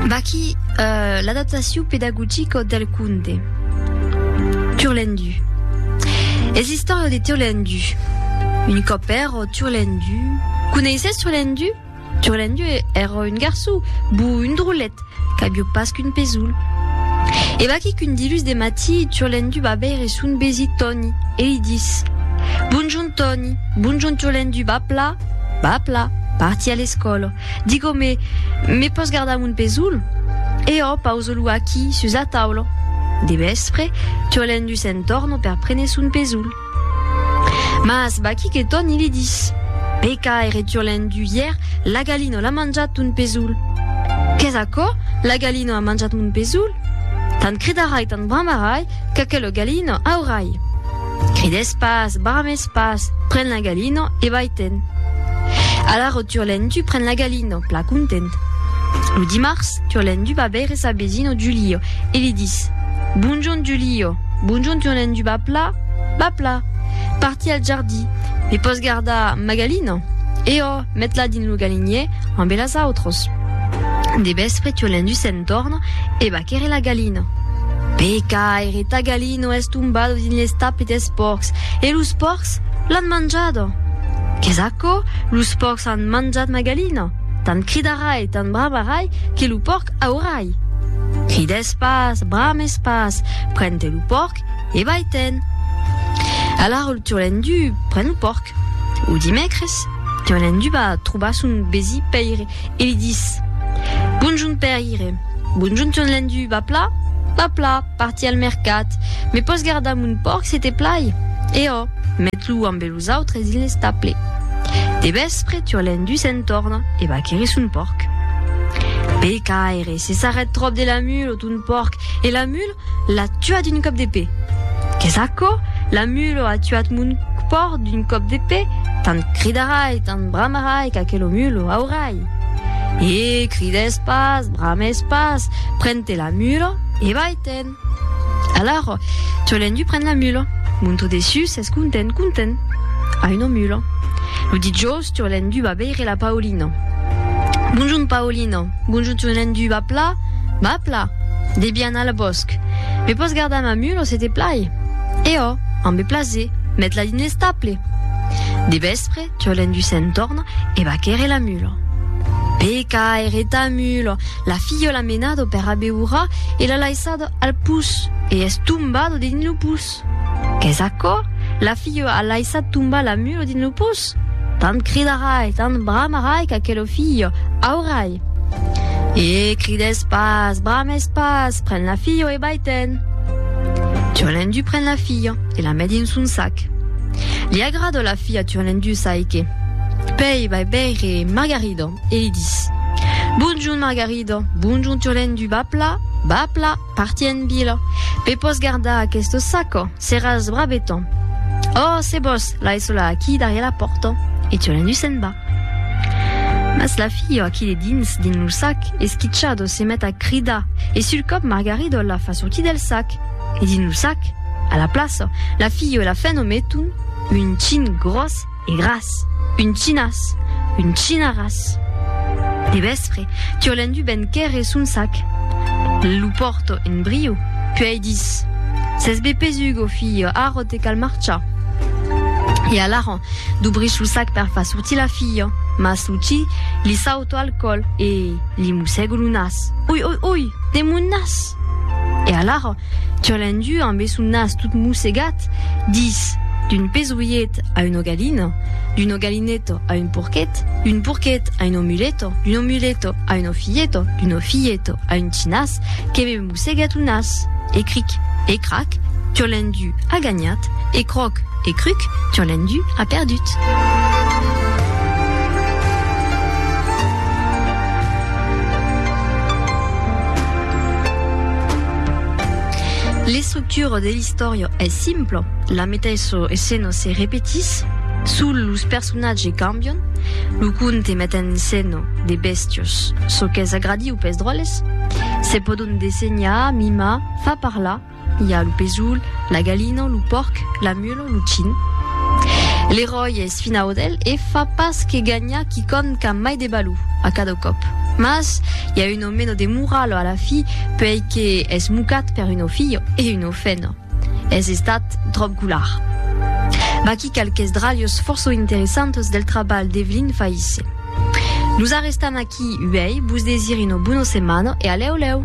Vaquí l'adaptacion pedagogica del conte Turlendu. Es l'istòria de Turlendu. Un còp èra Turlendu. Coneissètz Turlendu? Turlendu èra un garçon bou, un drolet, qu'aviá pas qu'un pesolh. E vaquí qu'un dilús de matí Turlendu va veire son vesit Tòni e li dis, Bonjorn Tòni, bonjorn Turlendu, va pla? Papla, parti a l'escòla. Digó-me, me pòs gardar mon pesoul? E ò, pauso-lo aquí, sus la taula. De vèspre, Turlendu se'n tòrna per prene son pesoul. Mas vaquí que tòn i li dis, Peca, ère Turlendu, ièr, la galina l'a manjat ton pesoul. Qu'es aquò? La galina a manjat mon pesoul? Tant cridarai, tant bramarai, qu'aquela galina aurai. Crides pas, brames pas, pren la galina e vai-te'n. Alara Turlendu pren la galina, plan content. Lo dimars, Turlendu va veire sa vesina Julia e li dis, Bonjorn Julia, bonjorn Turlendu va pla? Va pla. Parti al jardí, me pòs gardar ma galina? E ò, met-la dins lo galinier ambe las autras. De vèspre Turlendu se'n torna e va quèrre la galina. Pecaire, ta galina! I no es tombado dins les tapes des pòrcs. E los pòrcs l'an manjado. Qu'es aquò? Los pòrcs an manjat ma galina. Tant cridarai, tant bramarai, que lo pòrc aurai. Crides pas, brames pas, pren-te lo pòrc e vai-te'n. Alara lo turlendu pren lo pòrc. Lo dimècres, turlendu va trobar son besi Pèire e li dis, Bonjorn Pèire, bonjorn turlendu, va pla? Va pla! Parti al mercat. Me pòs gardar mon pòrc se te plai? E ò, met-lo ambe los autres dins l'estable. De vèspre, Turlendú se'n torna e va querir son pòrc. Pecaire, se s'arrèt tròp de la mula, ton pòrc, e la mula l'a tuat d'un còp de pè. Qu'es aquò? La mula a tuat mon pòrc d'un còp de pè? Tant cridarai, tant bramarai qu'aquela mula aurai. E crides pas, brames pas, pren-te la mula e vai-te'n. Alara, Cholendui pren la mula. Monto dessus, es content, content. A una mula. Lo dijòus, Cholendui va veire la Paulina. Bonjun, Paulina. Bonjun, Cholendui. Va pla? Va pla. Debia anar al bòsc. Me pòs gardar ma mula se te plai? E ò, ambe plaser. Met-la dins l'estable. De vèspre, Tiolen du Sentorn e bacère la mula. Peca ère ta mula! La filha l'a menado per abeurar e l'a laissado al pus, e es tombado dins lo pus. Qu'es aquò? La filha a laissat tombar la mula dins lo pus? Tant cridarai, tant bramarai qu'aquela filha aurai! E crides pas, brames pas, pren la filha e vai-te'n! Tiolen du pren la filha. E la met dins son sac. Li agrada la fia turlendusa e que. Pei vai veire Margarida e li dis. Bonjorn Margarida, bonjorn turlendu, va pla, va pla, parti en vila. Pe pòs gardar aqueste sac, seràs braveton. Oh, se vòs, l'ai sola aquí darrièr la pòrta. E turlendu se'n va. Mas la fia a qui de dins, dins lo sac, esquichada, se met a cridar e sul còp Margarida la fa sortir del sac. E dins lo sac, a la plaça, la filha e la fèna meton un chin gròs e gras, un chinas, un chinaràs. De vèspre, Turlendu ven quèrre son sac. Lo pòrta en brio, puèi dis, S'es be pesuga, o filha, ara te cal marchar. E alara, dubrís lo sac per far sortir la filha, mas lo chi li sauta al còl e li mossèga lo nas, Oi, oi, oi! De mon nas! E alara, Turlendu, ambe son nas tot mossegat, dis, D'un pesolhet a un ogalino, d'un ogalineto a un porquet, d'un porquet a un omuleto, d'un omuleto a un ofilleto, d'un ofilleto a un tinàs, que me mossegat lo nas! E cric! E crac! Turlendu a ganhat! E croc! E cruc! Turlendu a perdut! L'estructura de l'istòria es simpla, la meteissa escena se repetís, sols los personatges cambian, lo conte met en escena de bèstias, çò qu'es agradiu pes dròlles, se pòdon dessenhar, mimar, far parlar, I a lo pesoul, la galina, lo pòrc, la mula, lo chin. L'eròi es fin audèl e fa pas que ganhar quicòm qu'a mai de balor a cada còp. Mas i a un ò meno de morala a la fi, puèi que es mocat per un ò filho e un ò fena. Es estat tròp golar. Vaquí qualques dralhos fòrça interessantes del trabalh d'Evelyn Faïsse. Nos arrestam aquí uèi, vos desir una bona setmana e a lèu lèu!